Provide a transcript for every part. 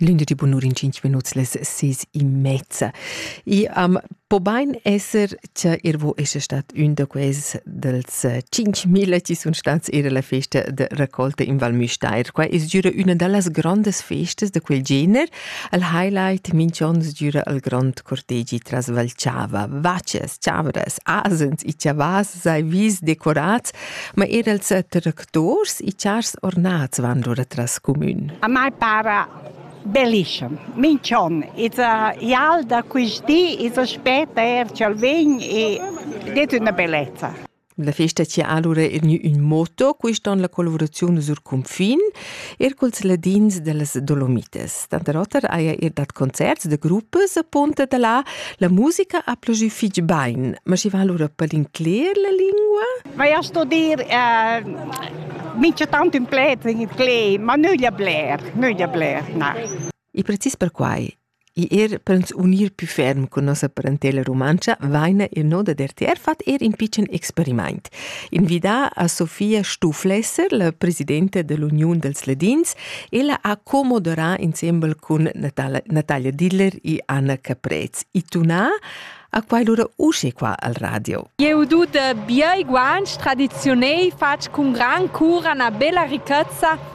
Lünde di bunur in 5 minuts les 6 e mezza. I am po bain esser cha ir vo esce stat ün da quels dels 5000 chi sun stats ir alla festa de raccolta in Val Müstair. Qua es giüra üna da las grandes festas da quel gener. Al highlight minch'on sgiüra al grand cortegi tras Valchava. Vacces, chavras, asens e chavas sei vis decorats, ma er als Dors i chars ornats van lura tras comün. A mai para bellissem. Minch'on. It's a ial da quist di, it's aspetta er ch'el vegn e det üna bellezza. La festa ci ha allora gnü ün motto, quist on la collaboraziun sur cunfin, er culs ladins dellas Dolomites. Denter oter haja er dat concerts da gruppas apunta da là. La musica ha plugì fitg bain, ma schi va allura per l'incler la lingua? Vai a studir eh, mincha tant ün pled in italian, ma nüglia bler, nüglia bler, na. E precis per quai, i er per uns unir più ferm con nossa parentela romancha, vaina il no da DRTR fat er in pitschen experimaint. Invidà a Sofia Stuflesser, la presidenta dell'Uniun dels Ledins, ella ha co-moderà insembel cun Natalia, Natalia Diller e Anna Caprez. E tunà a quai lura usce qua al radio. Eu tut biai guanch tradiziunei fatg cun gran cura na bella ricchezza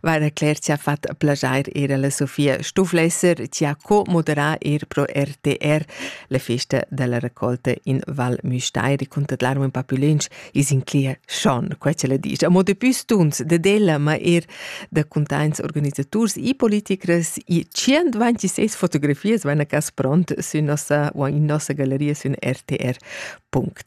va da Claire ci ha fatto piacere ir alla Sofia Stufflesser, ci ha co-moderà ir pro RTR la festa della raccolta in Val Müstair racconta larmo un po' più lunch is in clia schon, qua ce la dice. Amo de più stunts de della, ma er da contains organisators e politikers e 126 fotografies van a cas pront su nossa o in nossa galleria su RTR.ch.